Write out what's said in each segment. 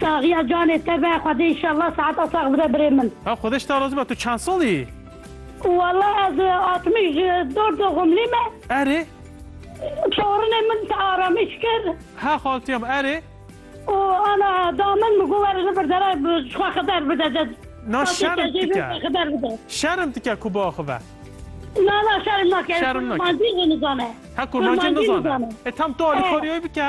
Saxiya canê te be xwedê inşallah seheta sax bide birê min. Ew xwedê ji te razî be tu çend sal î? Walla ez altmîş dor doxumlî me. Erê. Çarinê min te aramîş kir. He xaltiya min erê. Û ana da min bi ku were li vir dere ji xwe xiber bide de. Na şerm dike. Şerm dike ku biaxive. Na na şerm nake. Şerm nake. Kurmancî jî nizane. He kurmancî nizane. E tam tu alîkariyayî bike.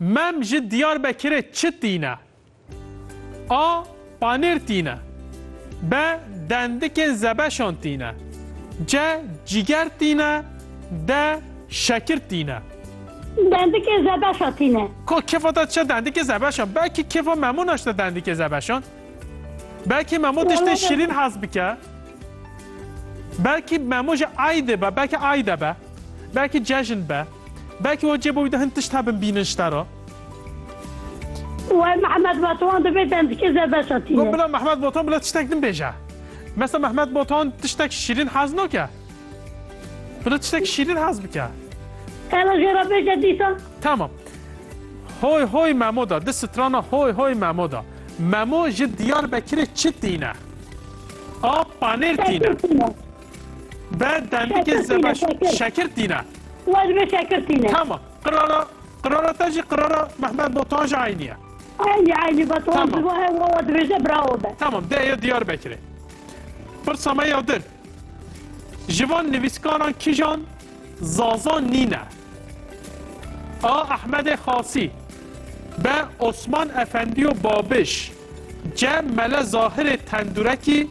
Mem ji Diyarbekirê çi tîne? A. Panêr tîne B. Dendikên zebeşan tîne C. Cîger tîne D. Şekir tîne. Dendikên zebeşan tîne. Ka kefa te diçe dendikê zebeşan. Belkî kefa Memo naşte dendikê zebeşan. Belkî Memo tiştên şîrîn hez bike. Belkî Memo ji Aydê be, belkî Ayde be. Belkî cejn be. Belkî we cêba wî de hin tişt hebin bînin ji te re. Wê Mehmet Batuhan divê dendikê zê veşatîne. Got bila Mehmet Batuhan bila tiştek din bêje. Mesa Mehmet Batuhan tiştek şîrîn hez nake. Bila tiştek şîrîn hez bike. Hela jê re bêje dîsan. Tamam. Hoy hoy Memo da, di strana hoy hoy Memo da. Memo ji Diyarbekirê çi tîne? A panêr tîne. Be demikê zeba şekir tîne. Wa dibe şekir tîne. Tamam. Qirara qirara te jî qirara Mehmet Botan jî eynî ye. Eynî eynî Botan ji bo hev wa dibêje bravo be. Tamam dê ya Diyarbekirê. Pirsa me ya din. Ji van nivîskaran kîjan Zaza nîne? A. Ehmedê Xasî B. Osman Efendîyo Babiş C. Mele Zahirê Tendurekî